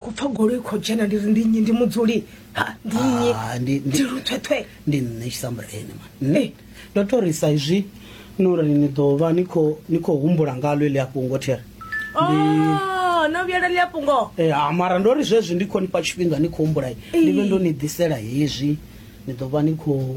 ku pfa goloi i khou dzhena ndi ri ndi nnyi ndi mudzuli ha ndi nnyi Ah, ndi- ndi- ndi luthwethwe ndi nṋe tshisambureni mani nṋe Eh. ndo to ri sa izwi no ri ni ḓo vha ni khou ni khou humbula ngalo eḽi afhungo there Oh, no vhuyela ḽi a fhungo Eh, ah, mara ndo ri zwezwi ndi khou ni fha tshifhinga ni khou humbula ndi vhe ndo ni ḓisela hezwi ni ḓo vha ni khou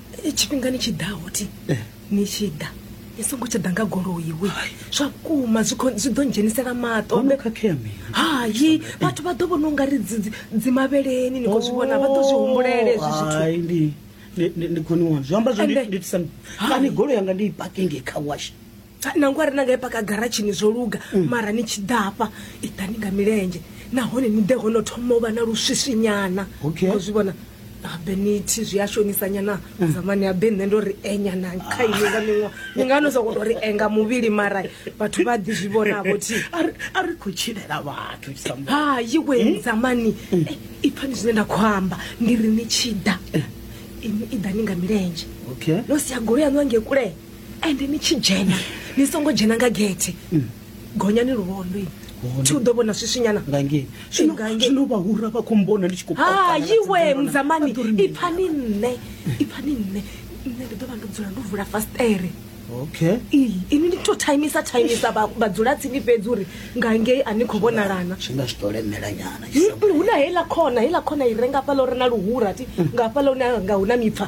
tshifhingani tshi ḓaho ti ni tshi ḓa ni songo tsha ḓa nga goloi we zwa vhukuma zwi kho- zwi ḓo ndzhenisela maṱo Ono khakhea mini? hayi vhathu vha ḓo vhona u nga ri dzi- dzi- dzimavheleni ni khou zwi vhona vha ḓo zwi humbulele hezwi zwithu Hai, ndi- ndi- ndi- ndi khoni wanu zwi amba zwo Ende- ndi tisani Hai. kani golo yanga ndi i pakinge kha wash nangwe a ri na nga i paka garatshini zwo luga mm. mara ni tshi ḓafha i ḓani nga milenzhe nahone ni ḓe hono thoma u vha na luswiswinyana o zwi vhona habe nithi zwi a shonisanyana mm. zamani habe nṋe ndo ri enyana kha ini nga miṅwa ni nga no soko to ri enga muvhili mara vhathu vha ḓi zwi vhonavho thi a ri khou tshilela vhathu hayi we mm. zamani eh, i pfani zwine nda khou amba ndi ri ni tshi ḓa ini i ḓa ni nga milenzhe no sia golo yaṋu ange kule ende ni tshi dzhena ni songo dzhena nga gethe mm. gonyani luvhondo ini thi u ḓo vhona swiswinyana ngangezwino vhahura vha khou mbona ndi tshi khouhaiwe muzamani ipfa ni nṋe ipfa ni nṋe nṋe ndi ḓo vha ndo dzula ndo vula fastere okay ini ndi to timisa timisa vhadzula tsini fhedzi uri ngangei a ni khou vhonalana tshi nga si to lemela nyana hu na heiḽa khona heiḽa khona i renga fhala uri na luhura ti nga fhala hune nga hu na mipfa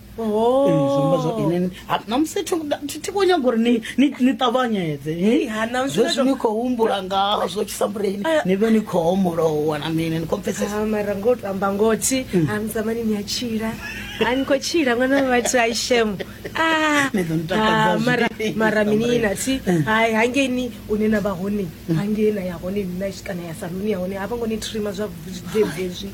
namusi tiko nyaga uri ni ṱavhanyedze zwezwi ni khou humbula ngazwo tshisambuleni ni vhe ni khou homolowa na mini ni khou pfesesmara ngo to amba ngothi amzamani ni a tshila a ni khou tshila ṅwana vhathu a ishemo mara mini na thi hai hangei ni une na vha hone hangei na ya hone nina kana ya saluni ya hone a vha ngo ni trima zwa zvezwi